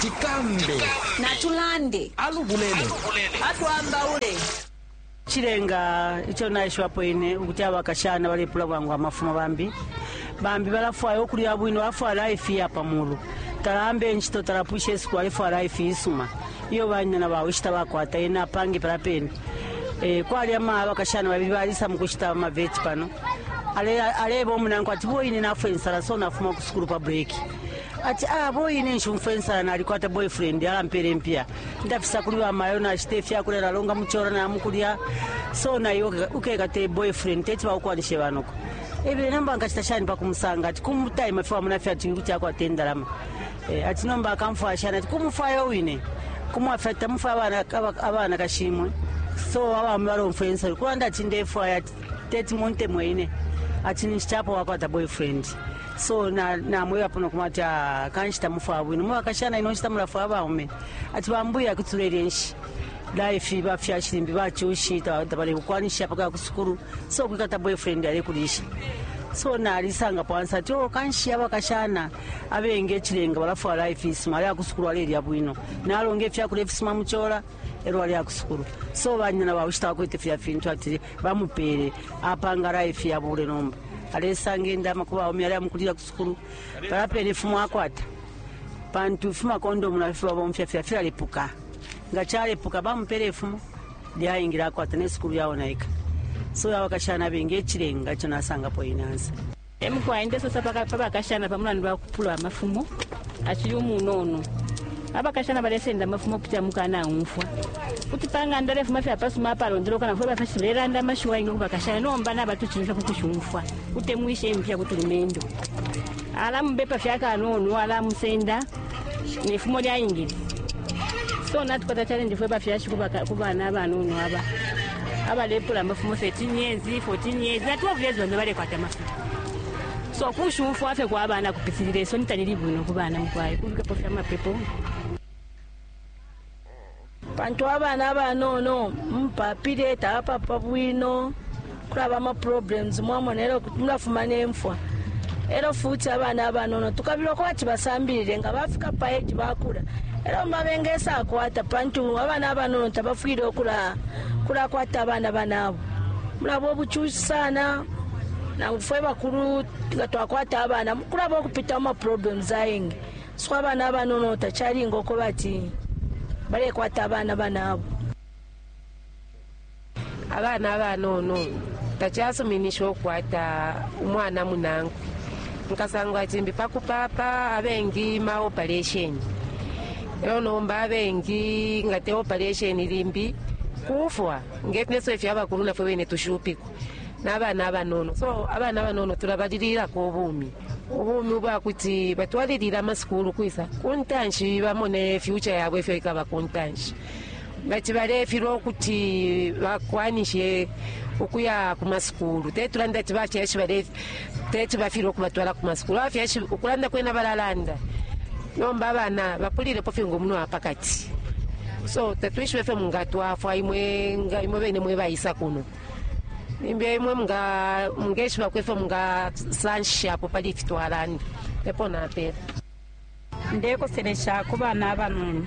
tikambe natulande alubulele atwambaule chilenga icho naishiwapo ine ukuti abakashana balepula bwangu amafumo bambi bambi balafwaya okulya bwino bafwala ifi ya pamulu talambe nchito talapwisha esiku alefwala ifi isuma iyo banyina bawe ishita bakwata ena apange pala pene e, kwali ama abakashana babili balisa mukushita amaveti pano Ale- aleba omunanko ati boine nafwe nsala so nafuma kusukulu pa breki ati ah boyi ine nshumfwa insala nalikwata boyfriend alampela impiya ndafisa kuli bamayo nashita ifyakulya nalonga muchora namukulya so naye uke- ukekate boyfriend teti baukwanishe banoko ebile nomba nkachita shani pakumusanga ati kumutaima fye wamona fye ati kuti akwata indalama Eh, ati nomba akamfwaya shani ati kumufwaya wine kumwafya ati tamufwaya abana- aba- abana kashimwe so abami balomfwa insala kulanda ati ndefwaya ati teti muntemwe ine ati ninshi chapo wakwata boyfriend so namwebapo na nokumwa ati ah, kanshi tamufwaya bwino mubakashana ino nshita mulafwaya baume ati bambuya kuti tulelya nshi life bafyashi limbi bacushi tabalekukwanisha paka kusukulu so kwikata boyfriend alekulisha so nalisanga pansi ati o oh, kanshi abakashana abengi echilenga balafwala ifisuma ali akusukulu alelya bwino nalonga ifyakula ifisuma muchola elo aleya kusukulu so banyina bawishi tabakwete filya fintu ati bamupele apanga life yabule nomba alesanga indama ku baume aleya mukulila kusukulu balapela ifumo akwata pantu ifuma kondomu nafifi babomfya fya filalepuka nga calepuka bamupela ifumo lyaingila akwata ne sukulu yaonaika so abakashana bengi ecilenga ico nasangapo inansa E mukwai ndesosa pa bakashana pa mulandu wa kupulwa amafumo acili umunono. Abakashana balesenda amafumo ukupitila mu kukanaumfwa. Kuti pa ng'anda alefuma fye apasuma apalondoloka na fwe bafyashi tulelanda amashiwi ayengi ku bakashana, nomba nabatucimfya ku kushumfwa. Kutemwisha impika ku tulumendo. Alamubepa fye akanono, alamusenda. ne fumo lyaingile so natukwata challenge fwe bafyashi ku bana abanono aba abalepula amafumo 13 years 14 years na 12 years bambi balekwata amafumo so kushumfwa fye kwa bana kupitilila isoni talili bwino ku bana mukwaye kubikapo fye amapepo pantu abana abanono mupapile tabapapa bwino kulaba amaproblems mwamona elo kuti mulafuma nemfwa elo futi abana abanono tukabila ukuba ati basambilile nga bafika pa age bakula elo mba bengesakwata pantu abana abanono tabafwile ukula kulakwata abana banabo mulaba obucushi sana nangu fwe bakulu nga twakwata abana kulaba okupita mu maproblems ayingi So abana abanono tacalinga ukweba ati balekwata abana banabo. Abana abanono tacasuminisha ukukwata umwana munankwe. Nkasangwa cimbi pa kupapa abengi ma operation lelo nomba abengi nga te operation limbi kufwa ngefneso ifyo abakulu nafwe bene tushupikwa n'abana abanono so abana abanono tulabalililako obumi ubumi ubwa kuti batwalilile amasukulu kwisa ku ntanshi bamone fyuca yabo ifyo ikaba ku ntanshi ngati balefilwa ukuti bakwanishe ukuya ku masukulu teti tulande ati bafyashi teti bafilwe ukubatwala ku masukulu abafyashi ukulanda kwena balalanda nomba abana bapulilepo fye ngomuno wa pakati so tatwishibe fye mungatwafwa imwe nga imwe bene mwe bayisa kuno Limbi imwe mungeshiba kwefyo mungasanshishapo pali ifi twalanda epo napela ndekoselesha ku bana abanono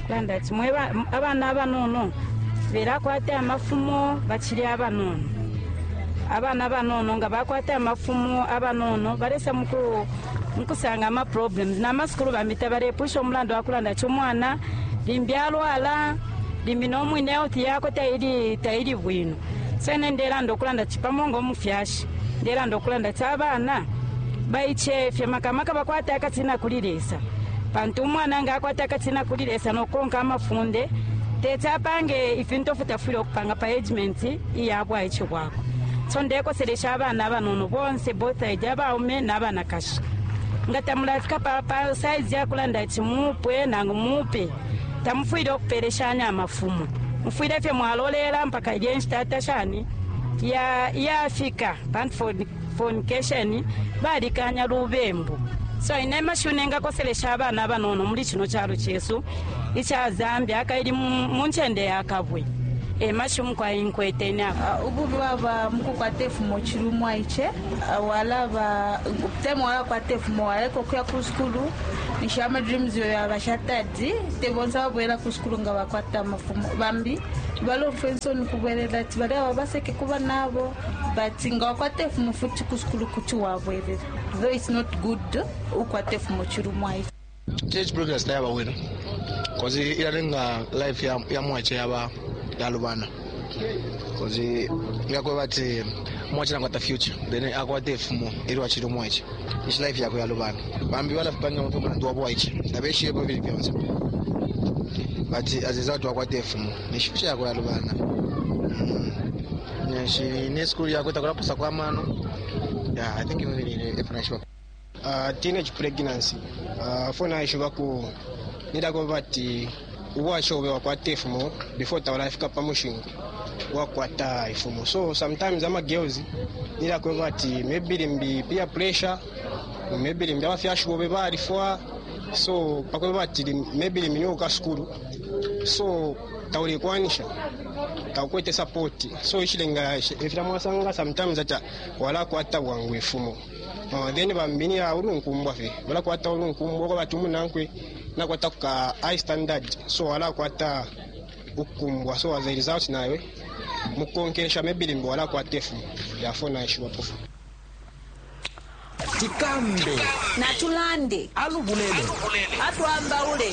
kulanda ati mwe abana abanono belakwata amafumo bacili abanono abana abanono nga bakwata amafumo abanono balesa muku nkusanga ama problems na masukulu bambi tabalepwisha omulandu wakulanda ati umwana limbi alwala limbi no mwine health yakwe taili taili bwino so ine ndelanda okulanda ti pamo nga omufyashi ndelanda okulanda ti abana baichefye makamaka bakwata akatina kuli lesa pantu umwana nga akwata akatina kuli lesa nokonka amafunde teti apange ifintu ofu tafwile okupanga pa agement iya bwaichi bwakwe so ndekoselesha abana abanono bonse both aid abaume nabanakashi nga tamulafika pa, pa size yakulanda ati mupwe nangu mupe tamufwile ukupele shani amafumo mufwile fye mwalolela mpaka ilye nshita ata shani ya yafika pantu foni fornication balikanya lubembu so ine amashiwi nengakoselesha abana abanono muli kino kyalo kyesu ikya zambia kaili mu mu nkyende ya kabwe emashiwi mukwai nkwete ine apo Ah, ububi bwaba mukukwata efumo kiri umwaice Ah, walaba te mwalakwata efumo waleka okuya ku sukulu ninshi ama dreams yo yaba shatadi te bonse ababwela ku sukulu nga bakwata amafumo bambi balomfa ensoni kubwelela ati bali aba baseke kuba nabo but nga wakwata ifumo futi ku sukulu kuti wabwelela though it's not good ukwata ifumo chilumwa ichi church broadcast yaba wena kozi ilalenga life ya, ya mwache yaba yalubana kuti ngakweba ati mwacila nkwata future then akwata ifumo ilyo acili umwaice ishi life yakwe yalubana bambi balafipanga mutwe mulandu wabo waice tabeshiyepo bili byonse but aziza kuti wakwata ifumo nishi future yakwe yalubana Mm. nishi ne school yakwe takulapusa kwa mano yeah, i think ivo bili ifuna shiba Uh, teenage pregnancy uh, fo naishiba ku nidako bati ubwasha obe wakwata ifumo before taulafika pa mushinku wakwata ifumo so sometimes ama girls nidako bati maybe limbi peer pressure maybe limbi abafyashi bobe balifwa so pakweba bati maybe limbi niwe uka sukulu so taulekwanisha takwete support so ishilenga ifira mwasanga sometimes ata walakwata bwangu ifumo Uh, then bambi ni ulunkumbwa fe balakwata ulunkumbwa kwa bati umunankwe nakwata kuka high standard so alakwata ukukumbwa so as a result nawe mukukonkesha maybe limbi walakwata efu yafo naishiwa pofu tikambe natulande alubulele atwambaule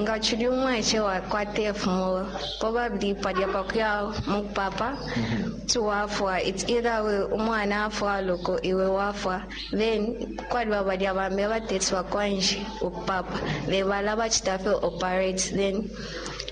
nga chili umwaice wakwata ifumo probably palya pakuya mukupapa tiwafwa it's either we umwana afwa loko iwe wafwa then kwaliba balya bambi abatetsi bakwanje ukupapa bebala bachitafe operate then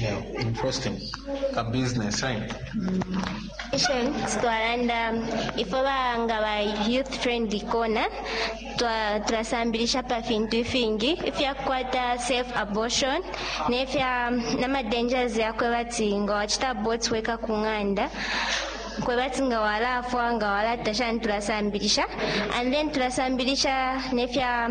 Yeah, interesting. A business, right? Sure. Twalanda ifo banga ba youth friendly corner twa- turasambirisha pa fintu ifingi ifyakukwata safe abortion nefya nama dangers yakwe bati nga wachita abort weka ku ng'anda kwe bati nga walafwa nga walatasha niturasambirisha and then turasambirisha nefya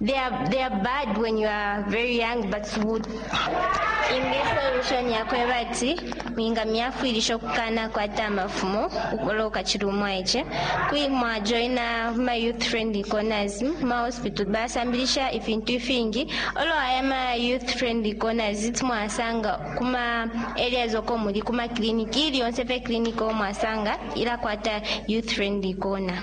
They are, they are bad when you are very young, but would in this solution yakweba ati minga myafwilisha okukana kwata amafumo ukola ukachiri umwaiche kui mwajoina ma youth friendly corners ma hospital basambilisha ifintu ifingi olo aya ma youth friendly corners iti mwasanga kuma areas oko muli kuma clinic ili yonse pe clinic o mwasanga ilakwata youth friendly corner